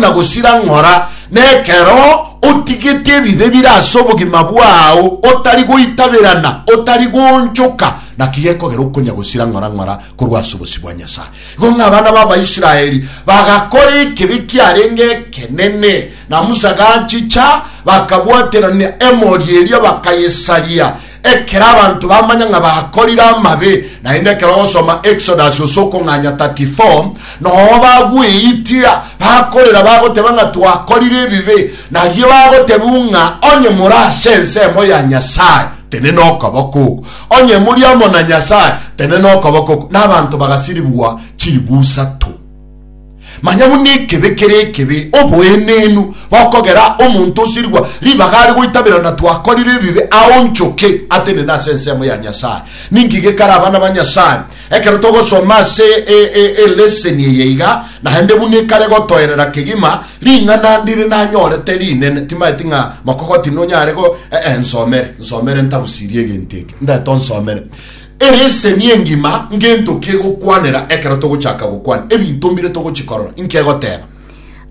na gosira ng'ora, na ekero otigete ebibe bire ase obogima bwao, otari goitaberana, otari goonchoka, naki gekogera okonya gosira ng'ora ng'ora korwa ase obosio bwa Nyasae. Igo ng'a abana b'Abaisraeli bagakora ekibe kiarenge ekenene, na Musa gachicha, bakabwaterania emori eria, bakayesaria. Ekero abanto bamanya ng'a bakorire amabe, naende ekero ogosoma Exodus ase okong'anya 34, nogo bagweitia, bakorera, bagoteba ng'a twakorire ebibe, nario bagotebiwa ng'a onye more ase ensemo ya Nyasae, tenena okoboko oko, onye muri amo na Nyasae, tenena okoboko oko, na abanto bagasiribwa chiribu isato. Manya buna ekebe kere ekebe, oboenenu bokogera omonto osirigwa ribaga are goitabera na twakorire ebibe aonchoke atenene ase ensemo ya Nyasae. Ninki gekare abana ba Nyasae? Ekero togosoma ase eleseni eye iga naende buna ekare gotoerera kegima ring'ana ndire nanyorete rinene, timaeti ng'a mokogoti nonyare go, eh, eh, nsomere, nsomere ntabusirie egento eke, ndeto nsomere. Ere eseni engima ngento ki egokwanera ekero togochaka gokwana ebinto mbire togochikorora? Inki egoteba?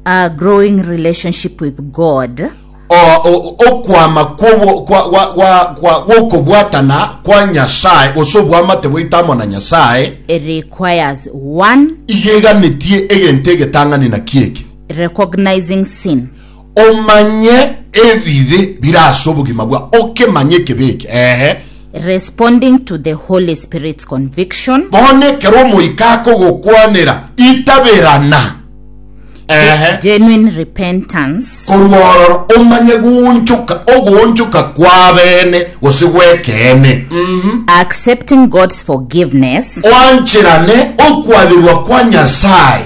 A Growing Relationship with God. O, o, okwama kwobo- kwa- gwa- gwa- gwa- gw'okobwatana kwa Nyasae, gose obwamate bwaito amo na Nyasae, It requires one, igeganetie egento egetang'ani naki eke. recognizing sin. Omanye ebibe bire ase obogima bwao, okemanye ekebe eke, eeh. Responding to the Holy Spirit's conviction. Bono ekero omoika akogokwanera, itaberana, eeh. Genuine repentance. Korwa ororo omanye goonchoka, ogoonchoka kw'abeene gose gw'ekeene, mm. Accepting God's forgiveness. Oancherane okwaberwa kwa Nyasae.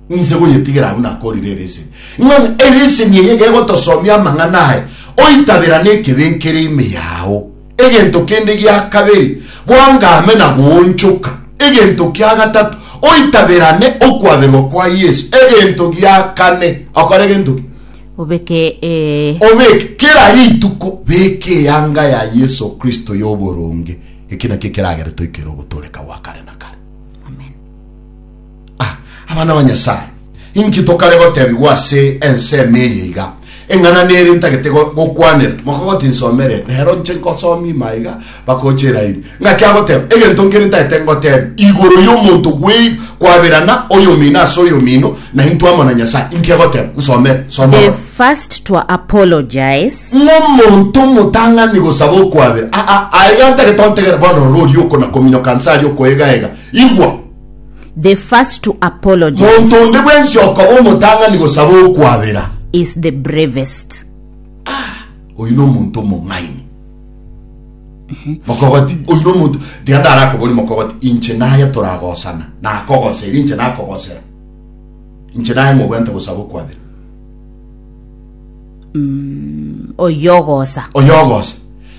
Ninse goyetigera abwo nakorire ereseni. Ng'ana ereseni eye egegotosomia amang'ana aye, oitaberane ekebe nkere ime yao. Egento kende gia kabere, bwangame na goonchoka. Egento kia gatato, oitaberane okwaberwa kwa Yeso. Egento gia kane, okore gento ki? Obeke ee. Obeke kera rituko, beka eyanga ya Yeso Kristo y'oboronge. Eki nakio ekeragere toikere ogotooreka gwa kare na kare. Amen. Ah, abana ba Nyasae, inki tokare gotebigwa ase ensemo eye iga? Eng'ana nere ntagete go- gokwanera. Moka gotinsomere, rero nche nkosomie ime aiga, bakoche eraini. Ng'aki agoteba, egento nkere ntagete ngotebi, igoro y'omonto gwei kwaberana oyomino ase oyomino, na intwe amo na Nyasae. Inki agoteba? Nsomere, soma. The first to apologize ng'omonto omotang'ani gosaba okwabera aa aiga ntagete ontegere bono rori okonakominyoka nse aria okoegaega igwa the first to apologize. Monto onde bwensi okoba omotang'ani gosaba okwabera. Is the bravest. Ah, oyu nomonto omong'aini. Mhm. Mokogoti, oyu nomonto, tiga ndarakobori mokogoti, inche naye toragosana, nakogosa, eri inche nakogosera. Inche naye ng'obwente gosaba okwabera. Mm, oyogosa. Oyogosa.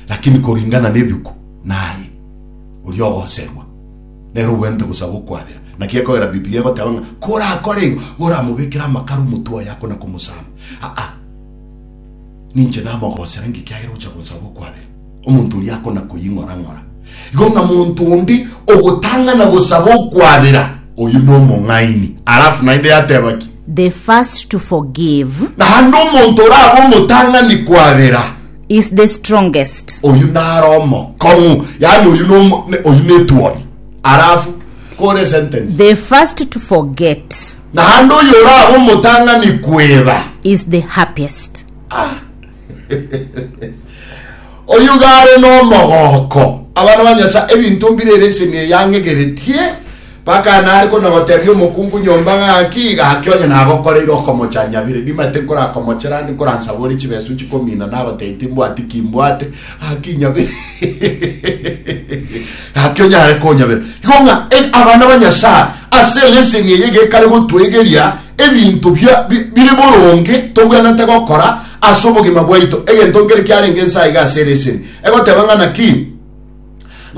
Lakini koringana nebiku, naye, oriogoserwa. Nere ogwenerete bosa gokwabera. Naki ekogera Bibilia egoteba ng'a korakore igo, goramobekere amakara omotwe oye akona komosamba. Aa. Ninche namogosera inki ekiagera ogocha gonsaba okwabera? Omonto oria akona koying'orang'ora. Igo ng'a monto onde ogotang'ana gosaba okwabera, oyio nomong'aini. Alafu naende yateba ki? The first to forgive. Naende omonto orabe omotang'ani kwabera. is the strongest. Oyio naro omokong'u, yaani oyio nomo, ne, oyio netuoni. Arafu, kore sentence. The first to forget. Naende oyio orabe omotang'ani kweba. Is the happiest. Ah. oyio gare nomogoko. Abana ba Nyasaye, ebinto mbire ere eseni eyang'egeretie. Mpaka nare korende gotebia omokungu nyomba ng'aki, gaki onye nagokoreire okomocha nyabire, nimanyete nkorakomoche rande nkoransabore chibesu inche komina nagotebi timbwati ki mbwate, gaki nyabire gaki onyare konyabera. Igo ng'a e- abana ba Nyasaye ase eleseni eye gekare gotwegeria ebinto bia- bi- bire boronge tobwenerete gokora ase obogima bwaito, egento nkere kiarenge nsa iga ase eleseni egoteba ng'a naki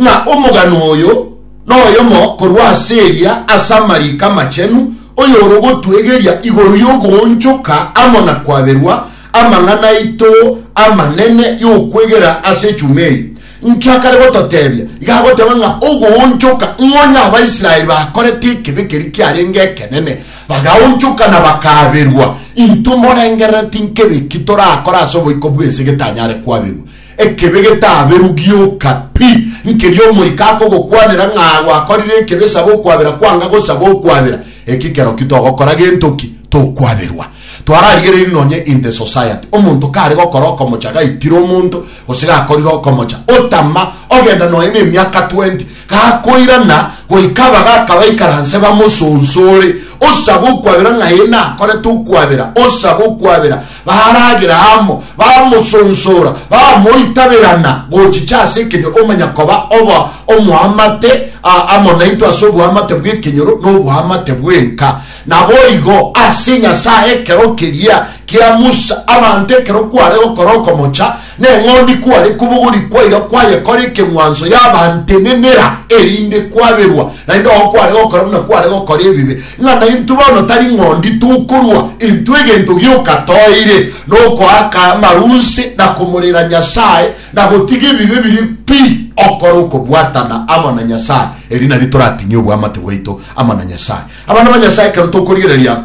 ng'a omogano oyo noyomo korwa ase eria ase amariiko amachenu, oyorogotwegeria igoro y'ogoonchoka amo na kwaberwa amang'ana aito amanene y'okwegera ase echuma eye. Inki akare gototebia? Iga agoteba ng'a ogoonchoka, ng'a onye Abaisraeli bakorete ekebe keria kiarenge ekenene, bagaonchoka na bakaberwa, intwe morengerereti nkebe ki torakore ase oboiko bw'ense getanyare kwaberwa? Ekebe getaaberwe gioka pi, nkeria omoika akogokwanera ng'a gwakorire ekebe saba okwabera kwanga gosaba okwabera, eki kerokio togokora gento ki, tokwaberwa. Twararigereiri nonye in the society, omonto kare gokora okomocha gaitire omonto, gose gakorire okomocha, otama, ogenda nonye nemiaka twenty, Gakoirana goika abagaaka baikaranse bamosonsore, osabe okwabera ng'a ee nakorete okwabera, osabe okwabera. Baragera amo, bamosonsora, bamoitaberana gochicha ase ekenyoro, omanya koba obo omoamate amo naintwe ase oboamate bw'ekenyoro na oboamate bwenka. Naboigo ase Nyasae ekero keria kia Musa, abanto ekero kware gokora okomocha, Neng'ondi kware kobogori kwaira kwayekora ekeng'wanso yabantenenera, erinde kwaberwa, naende oo kware gokora buna kware gokora ebibe. Ng'a naintwe bono tari ng'ondi tokorua, intwe egento gioka toire nokoaka amaru nse na komorera Nyasae na gotiga ebibe biria pi, okore okobwatana amo na Nyasae, eri nario toratinye obwamate bwaito amo na Nyasae. Abana ba Nyasae ekero tokorigereria.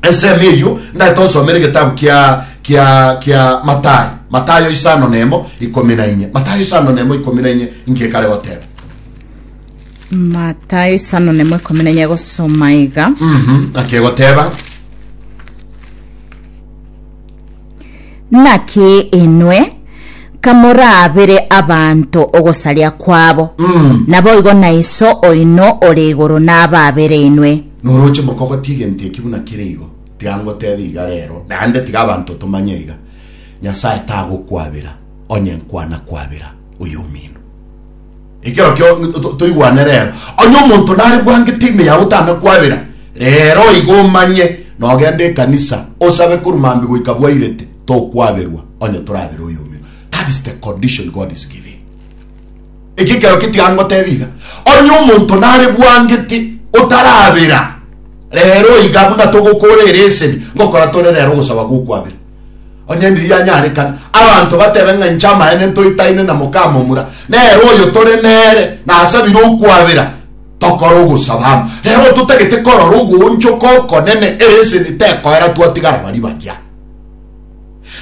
Esemo eyio ndaete onsomere egetabu kia kia kia Matayo, Matayo isano na emo ikomi na inye, Matayo isano na emo ikomi na inye inki ekare goteba? matayo isano nemo ikomi na enye gosoma iga Mhm, naki egoteba Naki inwe kamoraabere abanto ogosaria kwabo, naboigo na Iso oino ore igoro nabaabere inwe. Noroche mokogotia egento eki buna kere igo, tiga ngotebe iga reero, naende tiga abanto tomanye iga, Nyasae tagokwabera, onye nkwana kwabera oyomino. Ekero kio to- toigwane rero. Onye omonto nare bwangete ime yao otame kwabera, rero igo omanye nogende ekanisa osabe korwa mambi goika bwairete, tokwaberwa onye torabere oyomio. That is the condition God is giving. Eki ekero ketiga ngotebia iga, onye omonto nare bwangete otarabera, rero iga buna togokora ereseni ngokora tore rero ogosaba gokwabera. Onye ndiria anyarekane, abanto batebe ng'a inche amaene ntoitaine na mokamomura, nere oyo tore nere nasabire okwabera, tokore ogosaba amo. Rero totagete korora ogoonchoka okonene, ere eseni tekoera twatigara baria baria.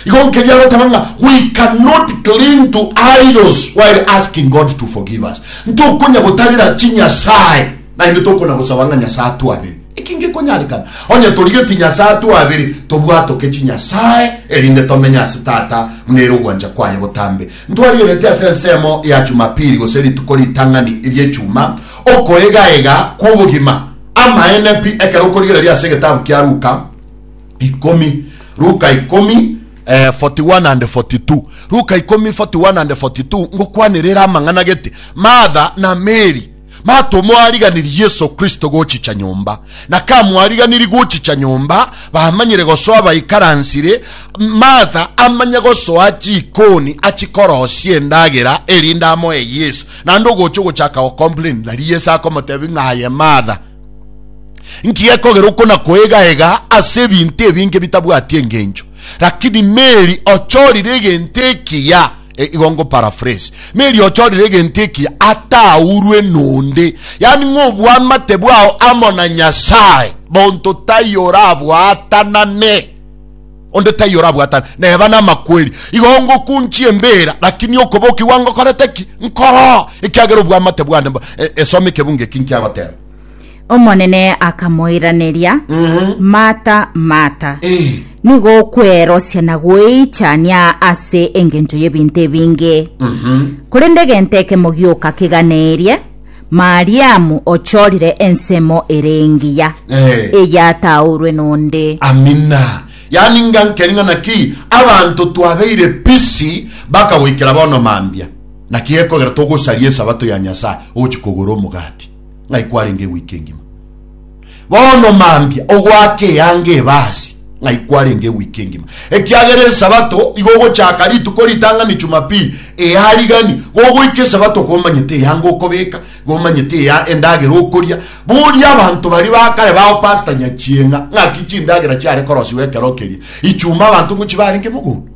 Igo nkeria agoteba ng'a we cannot cling to idols while asking God to forgive us. Ntokonya gotarera chinyasae Naende tokonagosaba ng'a Nyasae atwabere eki ngekonyarekana. Onye torigetie Nyasae atwabere, tobwatoke chinyasae, erinde tomenye ase Tata buna ere ogwancha kwaye botambe. Ntwarigeretie ase ensemo ya Chumapili, gose rituko ritang'ani eri'Echuma, okoegaega kw'obogima. Amaene pi, ekero okorigereria ase egetabu kia Luka ikomi, Luka ikomi, eh, 41 and 42, Luka ikomi, 41 and 42, ngokwanera ere amang'ana gete, Martha na Meri, Matomoariganiri Yeso Kristo gochicha nyomba, na kamoariganiri gochicha nyomba bamanyire gosoa baikaransire, Martha amanye gosoa chikoni achikorosia endagera erinde amoe Yeso. Naende ogocha ogochaka gocomplain, nari Yeso akomotebia ng'a aye Martha, nki gekogera okona koegaega ase ebinto ebinge bitabwati engencho? Lakini Mary ochorire egento ekiya. E, igo ngo paraphrase. Meri ochorire egento eki ataurwe nonde, yani ng'obwamate bwao amo na Nyasaye. Monto tai orabwatanane onde tai orabwatana neba namakweri igo ngokunchia embera lakini okobokigwa ngokorete ki nkoro ekiagera obwamate bwane e, esome ekebunge eki nkiagoteba Omonene akamoiraneria, Martha, Martha, Eh. nigo okwerosia na gweichania ase engencho y'ebinto ebinge. Korende egento ekemo gioka keganeirie, Mariamu ochorire ensemo ere engiya, Eh. eyataorwe nonde. amina yaani ngankeri ng'a naki abanto twabeire pisi bakagoikera bono mambia naki gekogera togosaria esabato ya nyasaye ogochi kogora omogati ng'ai kwarenge ewiki engima. Bono mambia ogoaka eanga ebasi ng'ai kwarenge ewiki engima, ekiagera Esabato igo ogochaka rituko ritang'ani Jumapili earigani, gogoika Esabato komanyete eanga okobeka, gomanyete ea endagera okoria. Boria abanto baria ba kare bao Pastor Nyachieng'a, ng'aki chindagera chiare korosiwa ekero keria Ichuma abanto ngochi barenge mogondo?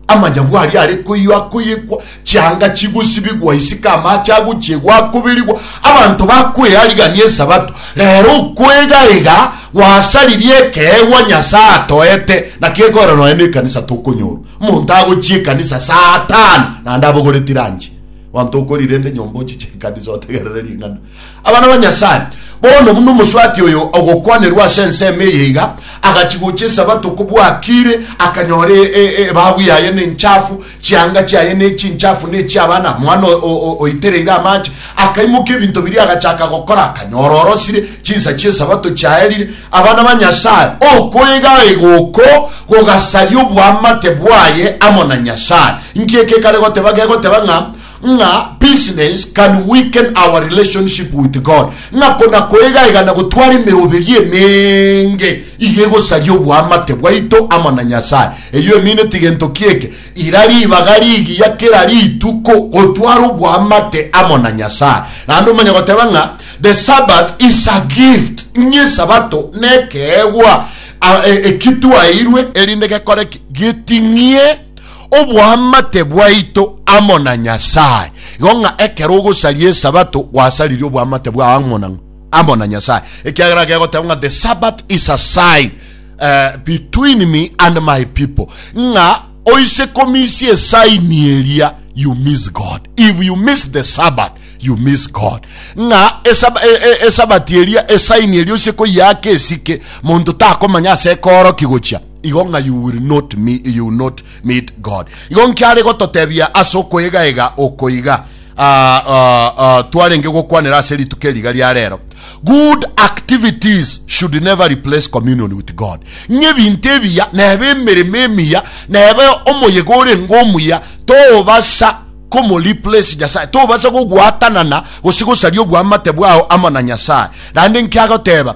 Amanyagu aria are koyio akoyekwa, chianga chigosibigwa isiko, amaache agochiegwa akoberigwa, abanto bakwearigania Esabato. Reero okoegaiga gwasaririe ekeegwa Nyasae atoete, naki ekorera nonya nekanisa tokonyorwa. Omonto agochia ekanisa saa tano naende abogoreti ranchi. Abanto okori rende nyomba ochiche ekanisa otegerere ring'ana. Abana ba Nyasae, bono buna omoswati oyo ogokwanerwa ase ensemo eye iga, agachia gocha Esabato kobua akiire, akanyora ebabu yaye nenchafu, chianga chiaye nechinchafu nechia abana, mwana oitereire amache. Akaimokia ebinto biria agachaka gokora, akanyora orosire, chinsa chi'Esabato chiaerire. Abana ba Nyasae, okoegaega oko gogasaria oboamate bwaye amo na Nyasae. Inki eke kare goteba? Gegoteba ng'a ng'a business can weaken our relationship with God, ng'a kona koegayega na gotwara emeroberio emenge iga egosaria oboamate bwaito amo na Nyasae. Eyio emineti gento ki eke? Ira ribaga rigiya kera rituko gotwara oboamate amo na Nyasae. Naende omanye goteba ng'a the Sabbath is a gift, ng'a Esabato nekeegwa e, eki twaeirwe, erinde gekore ki? Geting'ie Oboamate bwaito amo na Nyasae. Igo ng'a ekero ogosaria Esabato gwasaririe oboamate bwao amo na amo na Nyasae, ekiagera gegoteebwa ng'a the Sabbath is a sign uh, between me and my people, ng'a oise komisia esaini eria you miss God. If you miss the Sabbath you miss God. Ng'a esab e, e, esabati eria esaini eria oise koyiaka esike monto takomanya ase ekooroki gochia Igo ng'a you will not me, you will not meet God. Igo nki are gototebia ase okoegaega oko iga ah, ah, ah, twarenge gokwanera ase rituko eriga ria rero? Good activities should never replace communion with God. Ng'a ebinto ebiya nebe emeremo emiya nebe omoyega orenge omuya tobasa komoreplace Nyasae, tobasa gogwatanana gose gosaria obwamate bwao amo na Nyasae. Naende nki agoteba?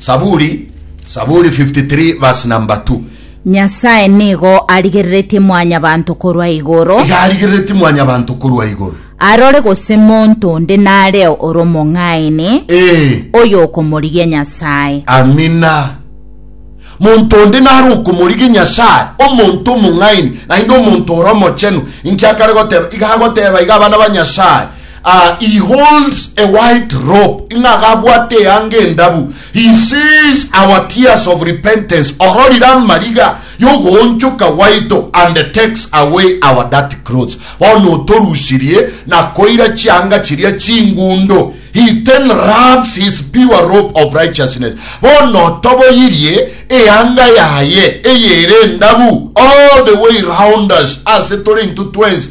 Saburi, Saburi 53 verse number 2. Nyasae nigo arigereretie mwanyabanto korwa igoro, Igarigerereti mwanyabanto korwa igoro. arore gose monto onde nareo ore omong'aini, Eh, oyo okomorigia Nyasae. amina. Monto onde nare okomorige Nyasae, omonto omong'aini, naende omonto ore omochenu. Inki akare goteba? Iga agoteba iga abana ba Nyasae, Ah, he holds a white robe, ng'a gabwate eanga endabu, he sees our tears of repentance, ororire amariga y'ogoonchoka gwaito, and takes away our dirty clothes. Bono otorusirie na koira chianga chiria chingundo, he then wraps his pure robe of righteousness. Bono otoboyirie eanga yaye eyere endabu all the way round us, ase tore intwe twensi,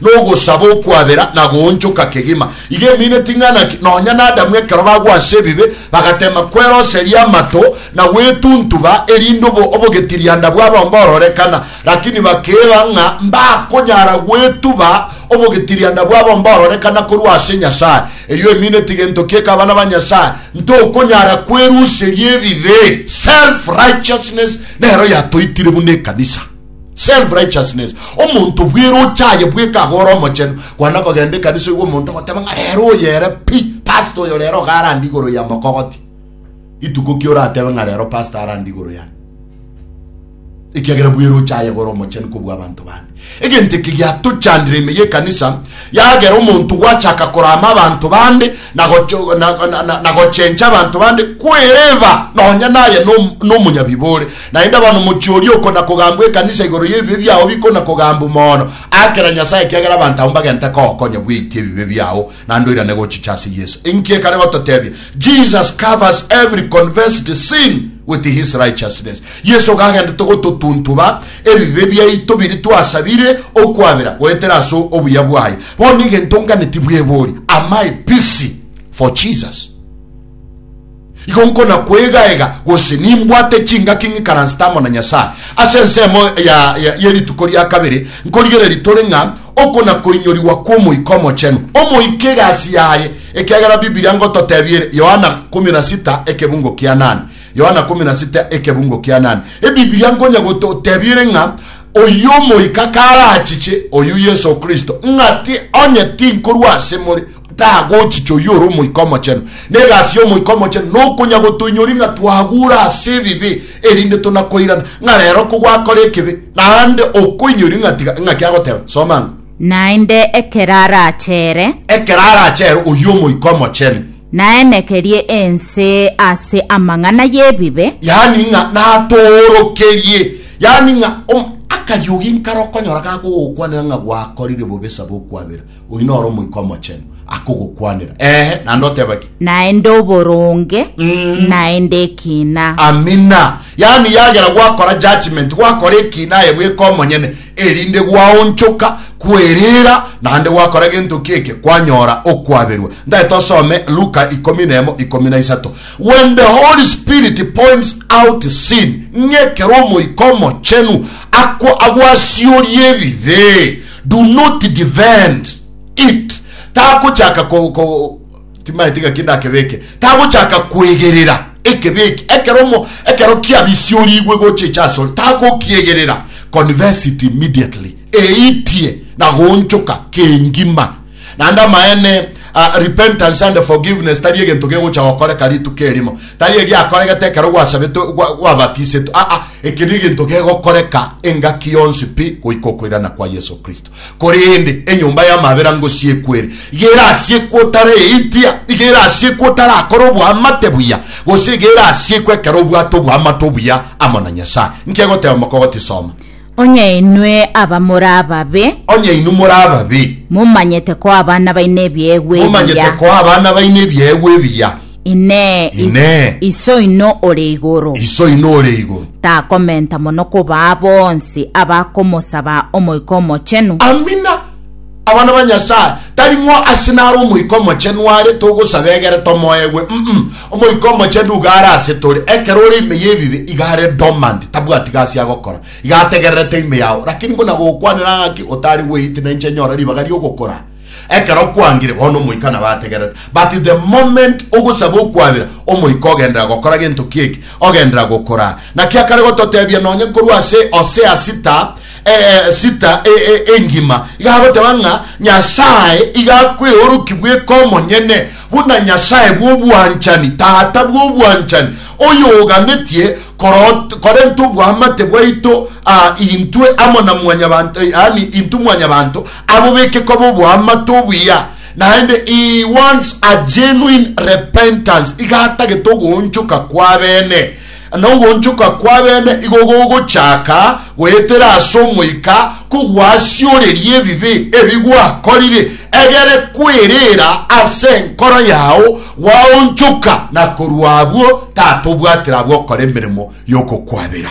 na ogosaba okwabera na goonchoka kegima. Iga emineti ng'ana ki nonya n'Adamu ekero bagwa ase ebibe, bagateema kweroseria amato na gwetuntuba erinde obo obogetirianda bwabo mbororekana, rakini bakeeba ng'a mbakonyara gwetuba obogetirianda bwabo mbororekana korwa ase Nyasae. Eyio emineti gento ki eke abana ba Nyasae, ntokonyara kweruseria ebibe. Self-righteousness nero yatoitire buna ekanisa. Self righteousness. Omonto bweroche aye bweka ago ore omochenu. Kwana kogenda ekanisa oigwe omonto ogoteba ng'a rero oyo ere pi, pastor oyo rero iga arande igoro ya mokogoti. Ituko ki oratebe ng'a rero pastor arande igoro yane? Ekiagera bweroche aye iga ore omochenu kobua abanto bande. Egento eke giatochandire ime y'ekanisa, yagera omonto gwachaka korama abanto bande na gochencha abanto bande kwereba nonya naye nomonyabibe ore. Naende abana omochie oria okona kogambwa ekanisa igoro y'ebibe biao bikona kogambwa mono aakera Nyasae ekiagera abanto abwo mbagenta kogokonya bweitia ebibe biao naende oirane gochicha ase Yeso. Inki ekare gototebia? Jesus covers every confessed sin with his righteousness. Yeso iga agendete gototuntuba Ebibe biaito biria twasabire okwabera goetera ase obuya bwaye, bono egento ngane tibwebori amae pisi for Jesus. Igo nkona kwegaega gose nimbwate chingaki ng'ikaransete amo na Nyasae. Ase ensemo ya, ya, ye rituko ria kabere nkorigereria tore ng'a oko na koinyorigwa kw'Omoika Omochenu, Omoika egasi yaye, ekiagera Bibilia ngototebia ere, Yohana kumi na sita ekebungo kianane, Yohana kumi na sita ekebungo kia nane. Ebibilia nkonya gototebire ng'a oyio omoika karachiche oyio Yeso Kristo, ng'a ti onye tinkorwa ase more, tagochiche oyio ore omoika omochenu. Na egasi y'omoika omochenu nokonya gotoinyoria ng'a twagure ase ebibe, erinde tonakoirana ng'a rero kogwakora ekibe, naende okoinyoria ng'a tiga ng'aki agoteba. Soma ang'o. Naende ekero arachere. Ekero arachere oyio omoika omochenu. Naenekerie ense ase amang'ana y'ebibe. Yaani ng'a natoorokerie, yaani ng'a om, akariogi nkare okonyora gakogokwanera ng'a gwakorire bobe saba okwabera, oyio noro Omoika Omochenu akogokwanera. Eeh, naende oteba ki? Naende oboronge, Mm. naende ekina. Amina. Yaani yagera gwakora judgment, gwakora ekina aye bweka omonyene, erinde gwaonchoka kwerira naende gwakora gento keke kwanyora okwaberwa. Ndagete osome Luka ikomi na emo ikomi na isato. When the Holy Spirit points out sin, ng'a ekero Omoika Omochenu akwa agwasioria ebibe, do not defend it. Takochaka ko, ko, Timaeti ng'aki ndakebeke. Tagochaka kwegerera ekebi eke. Ekero omo, ekero kiabisiorigwe gochicha asore, tagokiegerera, confess it immediately, eitie na goonchoka kengima. Naende amaene, uh, repentance and forgiveness tari egento gegocha gokoreka rituko erimo. Tari egiakoregete ekero gwasabetwe, gwa, gwabatisetwe. Aa, eke negento gegokoreka engaki yonsi pi goika okoirana kwa Yeso Kristo. Korende enyomba y'amabera ngosiekwe ere, iga erasiekwe otareitia, iga erasiekwe otarakora oboamate buya, gose iga erasiekwe ekero obwate oboamate obuya amo na Nyasae. Inki egoteba mokogoti? Soma. Onye inwe abamore ababe. Onye inwe more ababe. Momanyete koa abana baino ebiegwa ebiya. Momanyete koa abana baino ebiegwa ebiya. Inee, i- Inee. Iso oino ore igoro Iso ino ore igoro. takomenta mono kobaa bonsi abakomosaba Omoika Omochenu? Amina. Abana ba Nyasaye, tari ng'o ase naro Omoika Omochenu are togosaba egere tomoegwe. Mm-mm. Omoika Omochenu iga are ase tore. Ekero ore ime y'ebibe, iga are dormant, tabwati gasi agokora. Iga ategererete ime yao. Lakini buna gokwanera ng'aki otari gweiti na inche nyora ribaga ri'ogokora. Ekero kwangire bono omoika nabo ategerete. But the moment ogosaba okwabera, omoika ogenderera gokora gento ki'eki, ogenderera gokora. Naki akare gototebia nonye korwa ase Hosea sita, eh, eh, sita, eh, eh, engima, iga agoteba ng'a Nyasae iga akweoroki bweka omonyene, buna Nyasae bw'obwanchani, Tata bw'obwanchani, oyoganetie korot, korenta oboamate bwaito, ah, intwe amo na mwanyabanto, yaani intwe mwanyabanto, Abo bekekwa boboamate obuya, naende he wants a genuine repentance, iga atagete ogoonchoka kw'abene. Na ogoonchoka kw'abene igo gogochaka goetera ase omoika kogwasioreria ebibe ebi gwakorire, egere kwerera ase enkoro yao gwaonchoka, na korwa abwo tatobwatera abwo okora emeremo y'okokwabera.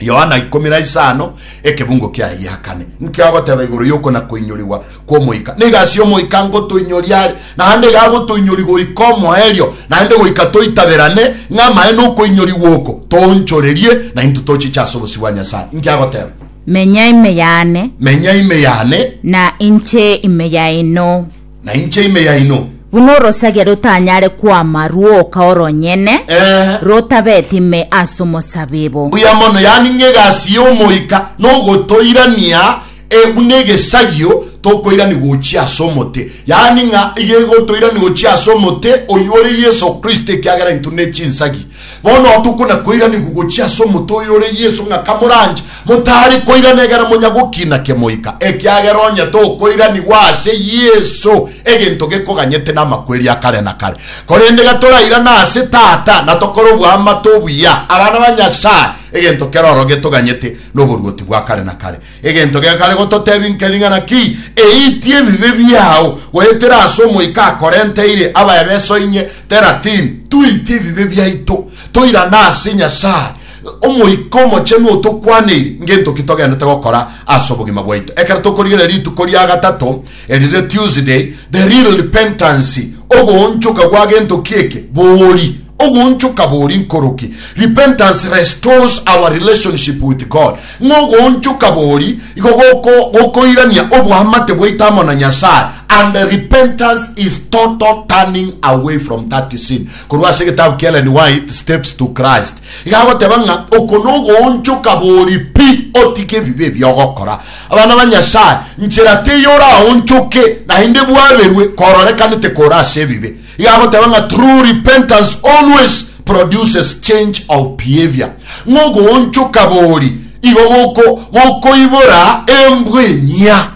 Yohana ikomi na isano ekebungo kiaye gia kane nki agoteba igoro yokona koinyorigwa kw'omoika? Niga ase omoika ngotoinyori are, naende iga agotoinyori goika omoerio, naende goika toitaberane ng'a amaene okoinyorigwa oko toonchorerie na intwe tochiche ase obosio bwa Nyasae. Nki agoteba? Menya ime yane, Menya ime yane. na inche ime yaino. na inche ime yaino. Buna orosagia rotanyare kwama rwoka oronyene, Eh. rotabeti ime as'omosabibu. Mbuya mono, yaani ng'a egasi y'Omoika nogotoirania eh, buna egesagio tokoirani gochia as'omote, yaani ng'a iga egotoirani gochia as'omote, oyio ore Yeso Kristo, ekiagera intwe ne chinsagi. Bono tokonakoiranigwa gochia ase omote oyo ore Yeso, ng'a kamoranche, motari koirana egere monya gokina kemoika, ekiagera onye tokoiranigwa ase Yeso, egento gekoganyete namakweri a kare na kare. Korende gatorairana ase Tata, na tokore oboamate obuya, abana ba Nyasae, egento keroro getoganyete noboruoti bwa kare na kare. Egento gekare gototebia inke ring'ana ki, eitie ebibe biao, goetera ase omoika akorenteire abaebeso inye, Teratin. Toitie ebibe biaito, toirane ase Nyasae, Omoika Omochenu otokwaneire ngento ki togenderete gokora ase obogima bwaito. Ekero tokorigereria rituko ria gatato, erire Tuesday, the real repentance, ogoonchoka gwa gento ki eke, boori. Ogoonchoka bori nkoroki? Repentance restores our relationship with God. Ng'a ogoonchoka bori igo goko gokoirania oboamate bwaito amo na Nyasae and repentance is total turning away from that sin. Korwa ase egetabu kia Ellen White, Steps to Christ, iga agoteba ng'a oko nogoonchoka bori pi otige ebibe ebi ogokora. Abana ba Nyasae, nchera teiyo oraonchoke naende bwaberwe kororekanete kore ase ebibe. Igagoteba ng'a true repentance always produces change of behavior, ng'a ogoonchoka bori igo goko gokoibora embwa enyia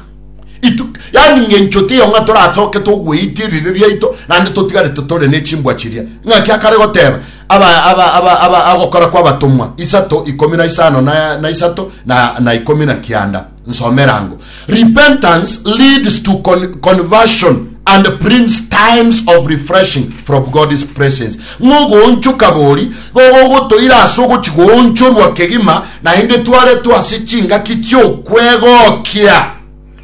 itu, yaani ng'a enchote eye ng'a torasoke togweite ebibe biaito naende totigarete tore ne chimbwa chiria. Ng'aki akare goteba aba aba aba aba agokora kwa abatomwa isato ikomi na isano na na isato na na ikomi na kianda. nsomerango repentance leads to con conversion and brings times of refreshing from god's presence ng'ogoonchoka bori gogogotoira ase ogochigoonchorwa kegima naende twaretwe ase chingaki chi'okwegokia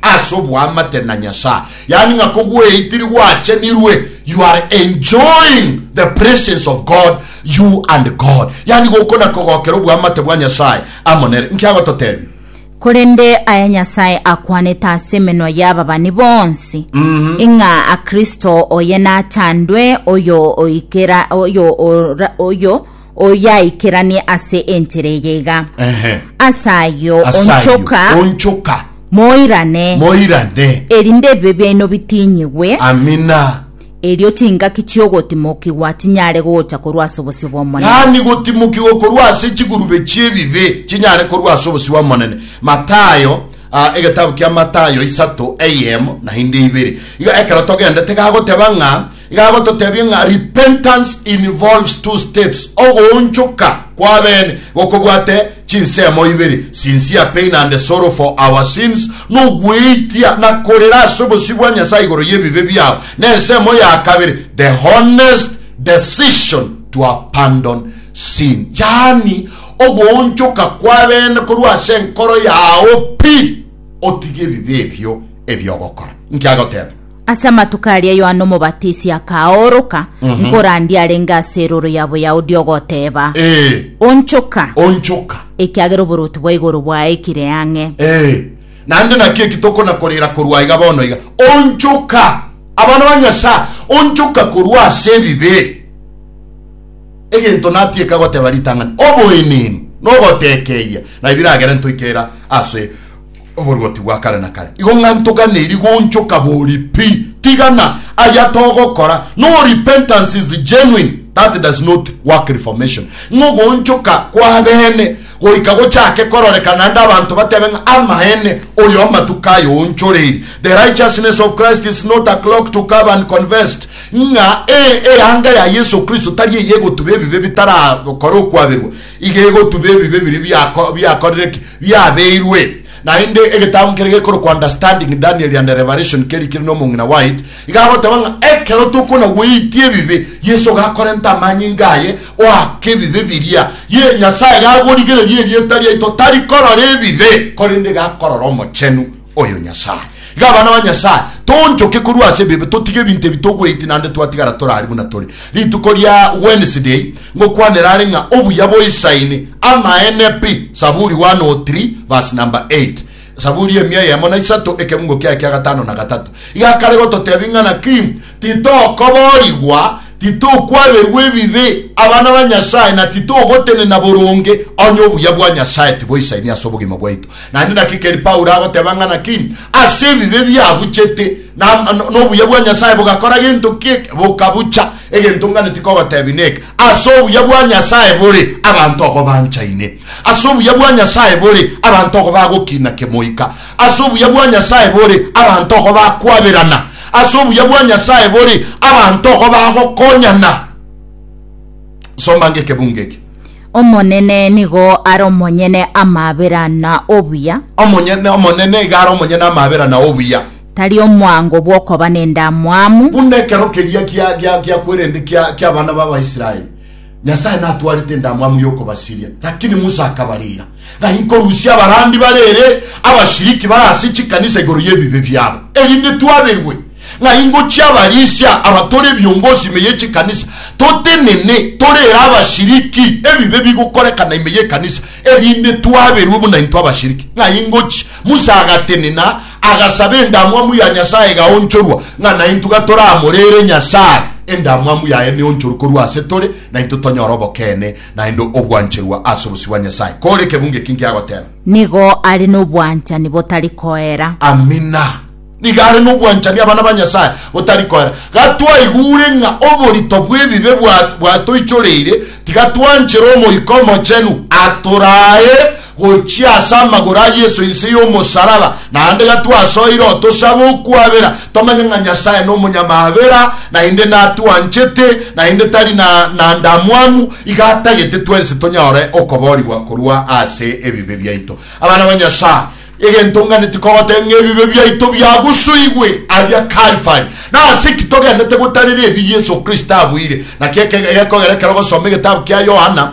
ase oboamate na nyasaye yaani ng'a kogweitiri gwachenirwe you are enjoying the presence of god you and god yaani gokona kogokera oboamate bwa nyasaye amonere nkiagototebia Korende aya Nyasae akwanete ase emenwa y'ababani bonsi, ng'a Kristo oye nachandwe, oyo oikera oyo ora- oyo oyaikeranie ase enchera eye iga. Ehe. Ase ayio Ase ayio, onchoka onchoka moirane, moirane erinde ebibe biaino bitinyigwe, amina Erio chingaki chi'ogotimokigwa tinyare gocha korwa ase obosio bw'Omonene. Yaani gotimokigwa korwa ase chigurube chi'ebibe chinyare korwa ase obosio bw'Omonene. Matayo, a, egetabu kia Matayo isato, eyemo naende ibere. Iga ekero togendete gagoteba ng'a, igagototebia ng'a repentance involves two steps, ogoonchoka kw'abene gokobwate Chinsemo ibere sincere pain and sorrow for our sins, nogweitia na korera ase obosio bwa Nyasaye igoro y'ebibe biao, na ensemo ya kabere the honest decision to abandon sin, yaani ogoonchoka kw'abeene korwa ase enkoro yao pi otige ebibe ebio ebi'ogokora. Inki agoteba? Ase amatuko aria Yohana Omobatisi akaoroka, nkorandia arenge ase erooro ya Boyahudi ogoteeba, Ee, Onchoka, onchoka. ekiagera oboruoti bwa igoro bwaikire ang'e. Ee, naende naki eki tokona korera korwa iga bono iga, Onchoka, abana ba Nyasae, onchoka korwa ase ebibe. Egento natieka goteba ritang'ani, oboenenu, nogotekeia, na ebiragere ntoikera ase oboruoti bwa kare na kare. Igo ng'a ntogane rigonchoka bori pi, tigana aya togokora, no repentance is genuine, that does not work reformation, ng'a ogonchoka kwabene goika gochake kororeka naende abanto batebe ng'a amaene oyo amatuko aye oonchoreiri. The righteousness of Christ is not a clock to curve and convest, ng'a e, eanga ya Yeso Kristo tari eye egotuba ebibe bitarakora okwaberwa, Iga egotuba ebibe biria biakorire ki? Biabeirwe. Naende egetambu keria gekorokwa Understanding Daniel and Revelation keria kere n'omong'ina White, iga agoteba ng'a ekero tokonagweitia ebibe, Yeso gakorenta amanyinga aye oaka ebibe biria, ye, Nyasae gagorigereria erieta riaito tari korora ebibe, korende gakorora Omochenu. oyo Nyasae. Iga abana ba Nyasae, toonchoke korwa ase ebibe, totige ebinto ebi togweiti naende twatigara tore aria buna tore. Rituko ria Wednesday ngokwanera are ng'a obuya boisaine amaene pi, Saburi 103 verse number 8. Saburi emia eyemo na isato, ekebungo kiaye kia gatano na gatato. Iga akare gototebia ng'a naki Titokoboorigwa, titokwaberwa ebibe, abana ba Nyasae, na titogotenena boronge, onye obuya bwa Nyasae tiboisaini ase obogima bwaito. Naende naki keri Paulo agoteba ng'a naki ase ebibe biabuchete, na nobuya bwa Nyasae bogakora gento ki eke, bokabucha. Egento nganeti kogotebia neke, ase obuya bwa Nyasae bore, abanto ogo banchaine. Ase obuya bwa Nyasae bore, abanto ogo bagokina kemoika. Ase obuya bwa Nyasae bore, abanto igo bakwaberana. Ase obuya bwa Nyasae bore, abanto igo bagokonyana. Soma ango ekebungo eke. Omonene nigo are omonyene amabera na obuya. Omonyene, Omonene iga are omonyene amabera na obuya. Tari omwango bw'okoba nendamwamu. Buna ekero keria gia gia gia kwerende kia ki'abana b'Abaisraeli, Nyasae natwarete endamwamu y'okobasiria, lakini Musa akabarira. Ng'ai nkorusia abarandia bare ere abashiriki bare ase chikanisa igoro y'ebibe biabo, erinde twaberwe? Ng'ai ngochie abarisia abatore ebiongozi ime y'echikanisa, totenene tore ere abashiriki ebibe bigokorekana ime y'ekanisa, erinde twaberwe buna intwe abashiriki? Ng'ai ngochie? Musa agatenena, agasaba endamwamu ya Nyasae egaonchorwa, ng'a naintwe gatoramore ere Nyasae, endamwamu yaye neonchorwe korwa ase tore, naintwe tonyore obokeene naende ogwancherwa ase obosio bwa Nyasae, kore ekebungo eki nkiagoteba. Nigo are nobwanchani botari koera. Amina. Nigo are nobwanchani abana ba Nyasae botari koera. Gatwaigure ng'a oborito bw'ebibe bwatoichoreire, tiga twanchera Omoika Omochenu atoraae gochia ase amagoro a Yeso inse y'omosaraba, naende gatwasoire otosabe okwabera tomanye ng'a Nyasae nomonyamabera, naende natwanchete, naende tari na, na ndamwamu, iga atagete twensi tonyore okoboorigwa korwa ase ebibe biaito. Abana ba Nyasae, egento ng'anete kogoteba ng'a ebibe biaito biagusuigwe aria Kalvari. Nase ki togenete gotarera ebi Yeso Kristo abuire? Naki ekegekogera ekero ogosoma egetabu kia Yohana,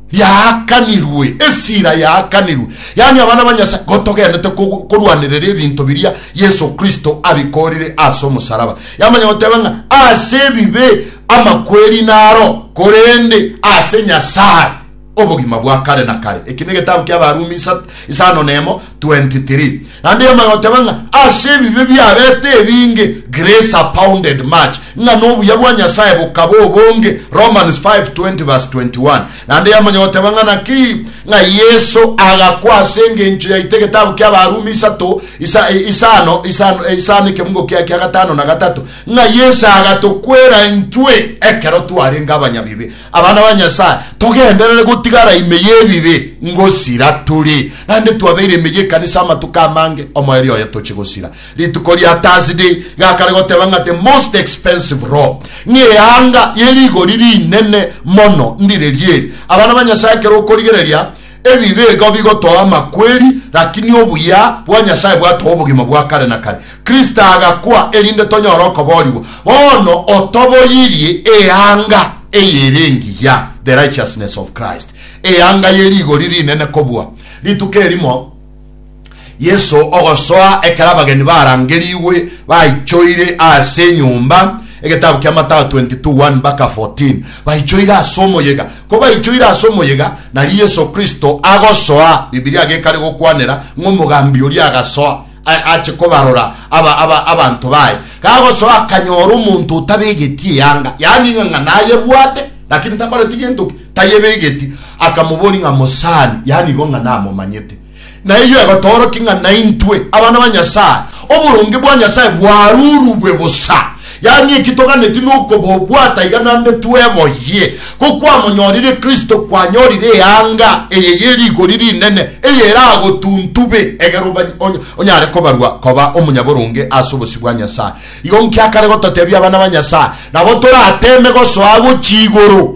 Yaakanirwe, esira yaakanirwe, yaani abana ba Nyasae gotogenete korwanerera ebinto biria Yeso Kristo abikorire ase omosaraba. Yamanya goteba ng'a ase ebibe amakweri naro, korende ase Nyasae obogima bwa kare na kare. Eki negetabu ki'Abarumi isano nemo. 23, naende yamanya goteba ng'a ase ebibe biarete ebinge grace abounded much, ng'a nobuya bwa Nyasae bokaba obonge, Romans 5:20 verse 21, naende yamanya goteba ng'a naki ng'a Yeso agakwa ase engencho yaito egetabu kia Abarumi isato, isa, isano, isano, isano ekemungo kia kia gatano na gatato, ng'a Yeso agatokwera intwe ekero twarenge abanyabibe. Abana ba Nyasae, togenderere gotigara ime y'ebibe ngosira tore. Naende twabeire ime y'ekanisa amatuko amange, omoerio oye toche gosira. Rituko ria Thursday gakare goteba ng'a the most expensive robe, ng'eanga ye rigori rinene mono, ndire rieri. Abana ba Nyasae ekero okorigereria, Ebibe igo bigotoa amakweri, lakini obuya bwa Nyasae bwatoa obogima bwa kare na kare. Kristo agakwa erinde tonyore okoboorigwa. Bono otoboyirie eanga eyere engiya, the righteousness of Christ, eanga ye rigori rinene kobua rituko erimo. Yeso ogosoa ekero abageni barangerigwe baichoire ase enyomba, egetabu kia Matao 22 1 mpaka 14. Baichoire ase omoyega. Ko baichoire ase omoyega, nario Yeso Kristo agosoa. Bibilia gekare gokwanera ng'a omogambi oria agasoa a- ache kobarora aba, aba, abanto baye. Gagosoa akanyora omonto otabegeti eyanga, yaani ng'a ng'a nayebwate, lakini takoreti gento ki? Tayebegeti. Akamoboria ng'a mosani, yaani igo ng'a namomanyete. Na eyio egotoorokia ng'a naintwe, abana ba Nyasae, oboronge bwa Nyasae bwarurugwe bosa. Yaani eki toganeti nokobobwata iga naende tweboyie, ko kwamonyorire Kristo kwanyorire eanga eye ye rigori rinene eyeragotuntube egere onyare kobarwa koba omonyaboronge ase obosio bwa Nyasae. Igo nkiakare gototebia abana ba Nyasae, nabo torateeme gosoa gochia igoro.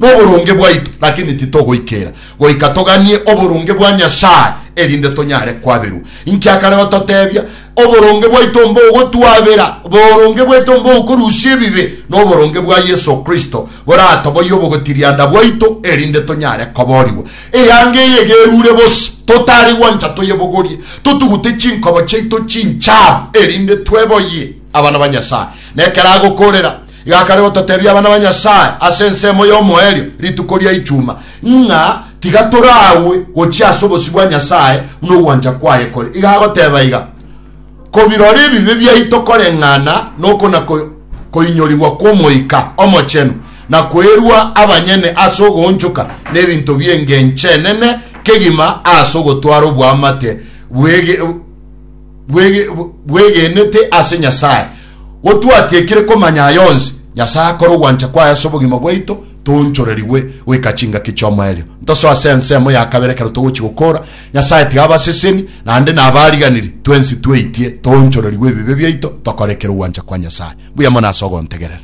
noboronge bwaito, lakini titogoikera goika toganie oboronge bwa Nyasae, erinde tonyare kwaberwa. Inki akare gototebia? Oboronge bwaito mbogotwabera, oboronge bwaito mbokorusia ebibe, noboronge bwa Yeso Kristo boratoboyie obogotirianda bwaito, erinde tonyare koboorigwa. Eanga eye gerure bose, totari gwancha toyebogorie, totugute chinkobo chiaito chincharu, erinde tweboyie abana ba Nyasae. Nekero agokorera, Gakare gototebia abana ba Nyasae ase ensemo y'omoerio rituko ria Ichuma ng'a tiga toraagwe gochia ase obosio bwa Nyasae buna ogwancha kwaye kore. Iga agoteba iga, Kobirora ebibe biaito koreng'ana noko na koinyorigwa kw'Omoika Omochenu, na kwerua abanyene ase ogoonchoka nebinto bi'engencho enene kegima ase ogotwara oboamate bwegenete ase Nyasae, Go twatiekire komanya aya onsi, Nyasae akore ogwancha kwaye ase obogima bwaito, toonchorerigwe goika chingaki chi'omoerio. Ntosoe ase ensemo ya kabere ekero togochia gokoora, Nyasae tiga abaseseni, naende nabariganiri, twensi tweitie, toonchorerigwe ebibe biaito, tokore ekero ogwancha kwa Nyasae. Mbuya mono ase ogontegerera.